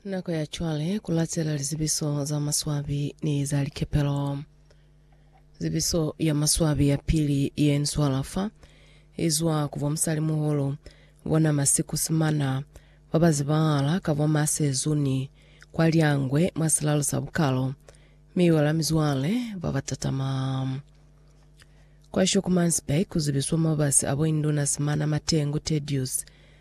Nako ya cwale ku latela lizibiso za maswabi ni za likepelo. Zibiso ya maswabi ya pili ye nswala fa i zwa ku bomusalimuhulu bona masiku simana ba ba zibahala ka bo ma sezuni kwa Lyangwe mwa silalo sa Bukalo mi i wela mizwale ba ba tatama. Kwa Schoemannsburg ku zibiswa mabasi a bo Induna Simana Matengu Tedious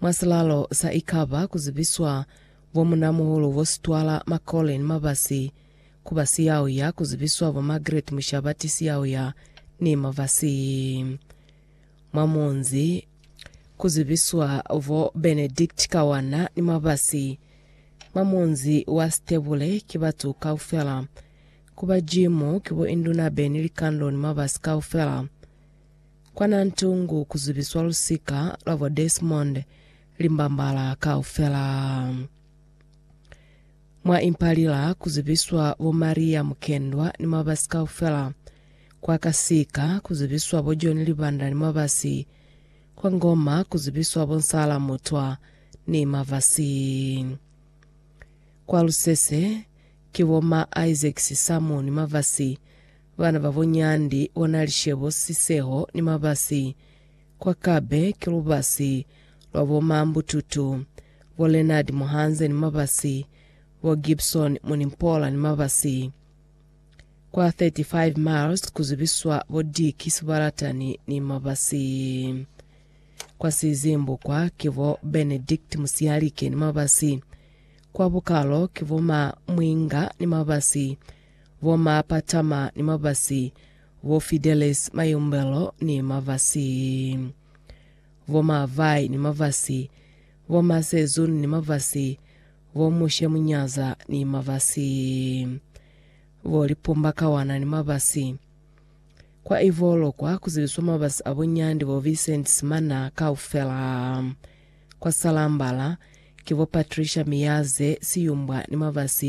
Mwa silalo sa ikaba ku zibiswa bo munamuhulu bo Sitwala Macaulay ni Mabasi, ku ba siyauya ku zibiswa bo Margaret Mushabati siyauya ni Mabasi. Mwa munzi ku zibiswa bo Benedict Kawana ni Mabasi. Mwa munzi wa Sitebule ki batu kaufela. Ku ba jimu ki bo Induna Benny Likando ni Mabasi kaufela. Kwa Nantungu ku zubiswa lusika lwa bo Desmond Limbambala kaufela. Mwa Impalila ku zubiswa bo Maria Mukendwa ni mwabasi kaufela. Kwa Kasika ku zubiswa bo John Libanda ni mwabasi. Kwa Ngoma ku zubiswa bo Nsala Mutwa ni mavasi. Kwa Lusese ki bo ma Isaac Sisamu ni mavasi. Bana babo Nyandi o na li Shebo, Siseho ni Mabasi. Kwa Kabe ki lubasi lwa bo Mambututu, bo Leonard Muhanze ni Mabasi, bo Gibson Munimpola ni Mabasi. Kwa 35 Miles ku zibiswa bo Dick Sibalatani ni Mabasi. Kwa Sizimbu kwa ki bo Benedict Musiyalike ni Mabasi. Kwa Bukalo ki bo Ma Mwinga ni Mabasi. bo Ma Patama ni Mabasi, bo Fidelis Mayumbelo ni Mabasi, bo Ma Vai ni Mabasi, bo Ma Sezun ni Mabasi, bo Mushe Munyaza ni Mabasi, bo Lipumba Kawana ni Mabasi. Kwa ivo lokwa ku zibiswa mabasi a bo Nyandi bo Vincent Simana kaufela. Kwa Salambala ki bo Patricia Miyaze Siyumbwa ni Mabasi,